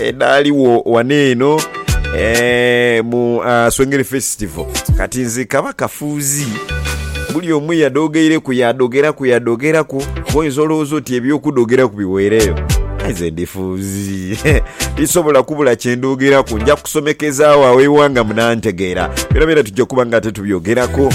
edhaligho ghano eno eh, mu ah, Swengere Festival. Kati nze kaba kafuuzi buli omu yadhogeireku yadhogeraku yadhogeraku oyinza olowooza oti ebyokudhogeraku biweereyo Aye nze ndi fuuzi tisobola kubula kyendhogeraku nja kusomekezaawo awo eighanga munantegeera byona byona tujja kuba nga ate tubyogerako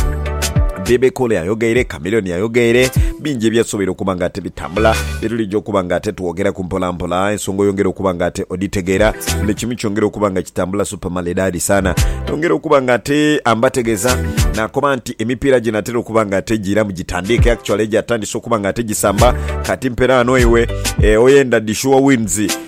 Bebe Cool ayogeire Chameleone ayogeire bingi ebyasoboire okuba nga ate bitambula, bye tulija okuba nga ate twogeraku mpolampola, ensonga oyongera okuba nga ate odhitegeera, buli kimu kyongera okuba nga kitambula super maledadi sana. Yongera okuba nga ate ambategeza nakoba nti emipiira ginatera okuba nga ate giiramu gitandiike, actually gyatandise okuba nga ate gisamba, kati mperaano iwe eh, oyenda dhi sure wins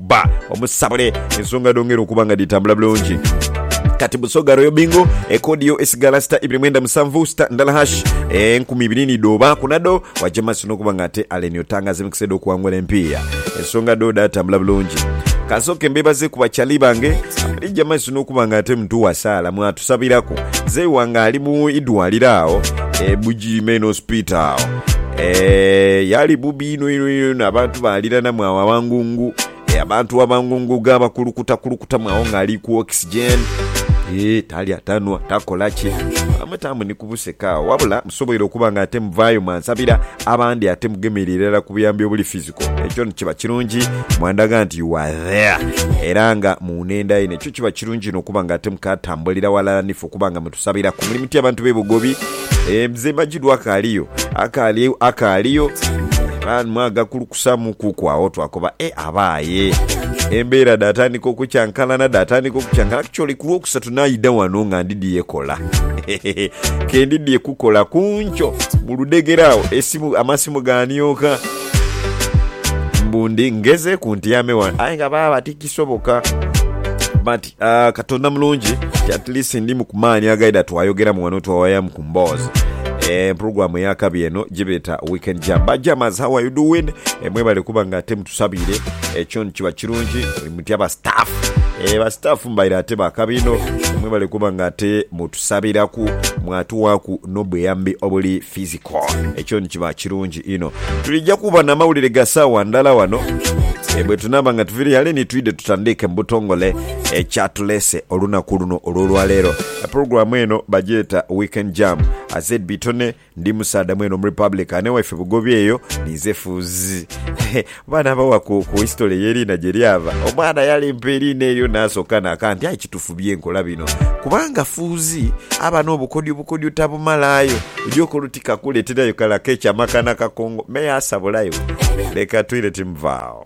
bba omusabule ensonga dhongera okuba nga dhitambula bulungi. Kati Busoga Royal Bingo ekodi yo esigala sita ibiri mwenda musanvu sita ndala hash enkumi ibiri ni dhoba kunado waja maso nokuba nga ate Allen Otanga azimikisa edo okuwangula empiiya ensonga do dhatambula bulungi kansooke mbebaze ku bakyali bange abalija maso nokuba nga ate mtu wasaala mwatu Tusabiraku. Mzei wange ali mu idwaliro agho e Bugiri Main Hospital agho. Eeh yali bubi inho inho inho inho abantu baliranamu agho abangungu. Eeh abantu abangungu ga bakulukuta kulukutamu agho nga ali ku oxygen. Eeh talya tanhwa takola ki. Bamwe tamu ni kubuseka agho wabula musoboire okuba nga ate muvayo mwansabira abandi ate mugemera irala ku buyambi obuli physical. ekyo kiba kirungi mwandaga nti you are there era nga munenda yino ekyo kiba kirungi ino okuba nga ate mukatambulira walala nife okuba nga mutusabiraku muli mutya abantu bebugobi e, mzee majidu akaaliyo akaaliyo akaaliyo era mwagakulukusamu kuku awo twakoba e abaaye embeera datandika okukyankalana datandika okukyankalana actually ku lwokusatu naida wano nga ndidiye kola kendidiye kukola kunkyo muludegera awo esimu amasimu ganyoka Mbu ndi ngezeeku ntyame ghano aye nga baaba tikisoboka. But ah, Katonda mulungi nti at least ndi mu kumaani agaidha twayogeramu ghano twawayamu ku mboozi. Eh, program eya kabi eno gyebeeta Weekend Jam. Ba jammers, how are you doing? Eh, mwebale kuba nga ate mutusabiire. Ekyo nikiba kirungi mutya ba staff. Eh, ba staff mubaire ate ba kabi inho. Mwebale kuba nga ate mutusabiraku mwatuwaaku n'obuyambi obuli physical. Ekyo nikiba kirungi. Inho. Twidha kuba na mawulire ga saawa ndhala ghano bwe tunaaba nga tuviire ghale ni twidha tutandiike mu butongole ekyatuleese olunaku luno olw'olwaleero. Pulogulaamu eno bagyeta Weekend Jam. ZB Tony ndi musaadha mwene Omurepublican, ewaife Bugobi eyo ninze Fuuzi. Baana abawa ku ku history eye liina gye lyava. Omwana yalempa eliina elyo nasoka naka nti aye kitufu byenkola bino kubanga fuuzi aba nobukodyo bukodyo tabumalaayo oja okola oti kakuleterayo kala kecha maka nakakongo me asa bulayo leka toilet mva agho.